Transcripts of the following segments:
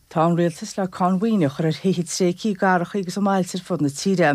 Tá an rialtas le cáin mhaoine a chur ar thithe tréigthe i gcathrachaí agus i mbailte ar fud na tíre.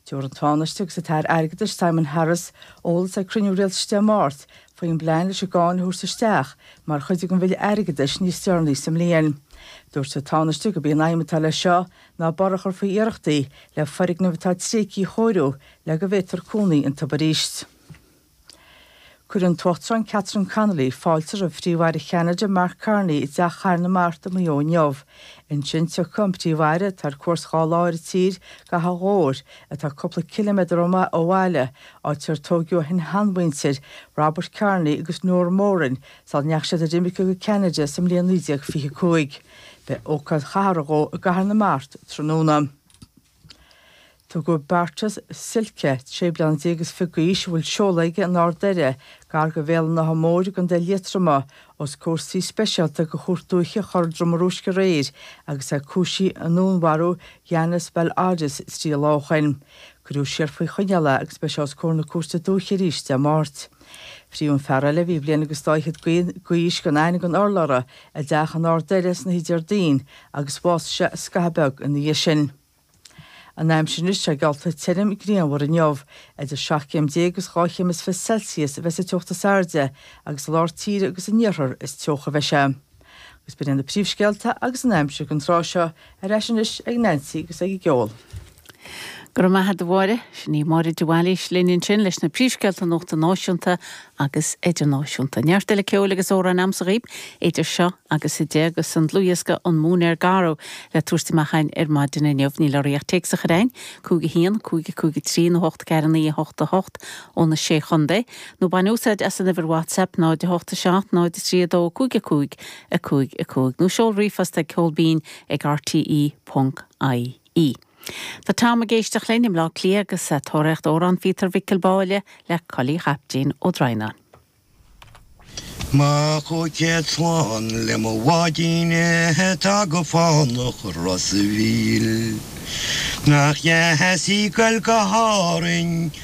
Tabharfaidh an Tánaiste agus an tAire Airgeadais, Simon Harris, eolas ag cruinniú rialtais Dé Máirt faoin bplean leis an gcáin a thabhairt isteach mar chuid den bhille airgeadais níos deireanaí sa mbliain. Dúirt an Tánaiste gurb í an aidhm atá leis seo ná borradh a chur faoi iarrachtaí le foirgnimh atá tréigthe a chóiriú le go bhféadfar cónaí iontu arís. Cuirfidh an tUachtarán Catherine Connolly fáilte roimh Phríomh-Aire Cheanada, Mark Carney, i dTeach Chathair na Mart i Maigh Eo inniu. Ansin tiocfaidh an Príomh-Aire, atá ar cuairt dhá lá ar an tír, go hAchadh Ghobhair, atá cúpla ciliméadar ó bhaile, áit ar tóigeadh a shin-sheanmhuintir, Robert Carney agus Nora Moran, sula ndeachaigh siad ar imirce go Ceanada sa mbliain 1925. Beidh ócáid chathartha dhó i gCathair na Mart tráthnóna. Tugadh Beartas Silke, sé bliana déag is fiche d'aois, a bhfuil seoladh aige in Ard Doire, gar go Bhéal an Átha Móir i gContae Liatroma, os comhair suí speisialta go Chúirt Dúiche Chora Droma Rúisc aréir agus é cúisithe i ndúnmharú Yannis Vel-Aris, 3 lá ó shin. Cuireadh siar faoi choinneáil é agus beidh sé os comhair na cúirte dúiche arís Dé Máirt. Frítheadh an fear eile a bhí bliain agus dá fhichead d'aois gan aithne gan urlabhra i dteach in Ard Doire san oíche Déardaoin agus bhásaigh sé scaitheamh beag ina dhiaidh sin. An aimsir anois, tá sé geallta tirim grianmhar inniu, idir seacht gcéim déag agus dhá chéim is fiche Celsius a bheidh sa teocht is airde agus i lár tíre agus san iarthar is teocha a bheidh sé. Agus b'in iad na príomhscéalta agus an aimsir don tráth seo, ar ais anois ag Neansaí agus ag an gceol. Go raibh maith agat, a Mháire. Sin í Máire de Bhailís linn ansin leis na príomhscéalta nuachta náisiúnta agus idirnáisiúnta. Neart eile ceoil agus amhráin a'm sa gcaidhp idir seo agus a deich agus an dlúthdhiosca An Móinéar Garbh le tabhairt amach a'ainn ar maidin inniu. Níl orthaí ach téacs a chur a'ainn, 5 1 5 5 3 nó 8 4 9 8 8 ó na sé chontae. Nó bain úsáid as an uimhir WhatsApp 08793225 5 5 nó seol ríomhphost ag ceol binn ag rte.ie. Tá Tom ag éisteacht linn i mBleá Cliath agus a' tóraíocht Amhrán Pheter Mhicil Báille le Cóilí Chaiptín Ó Droighneáin. Mo chúig chéad slán le mo bháidín atá go fánach i Ros a' Mhíl. Nach dheas í goil go hÁrainn.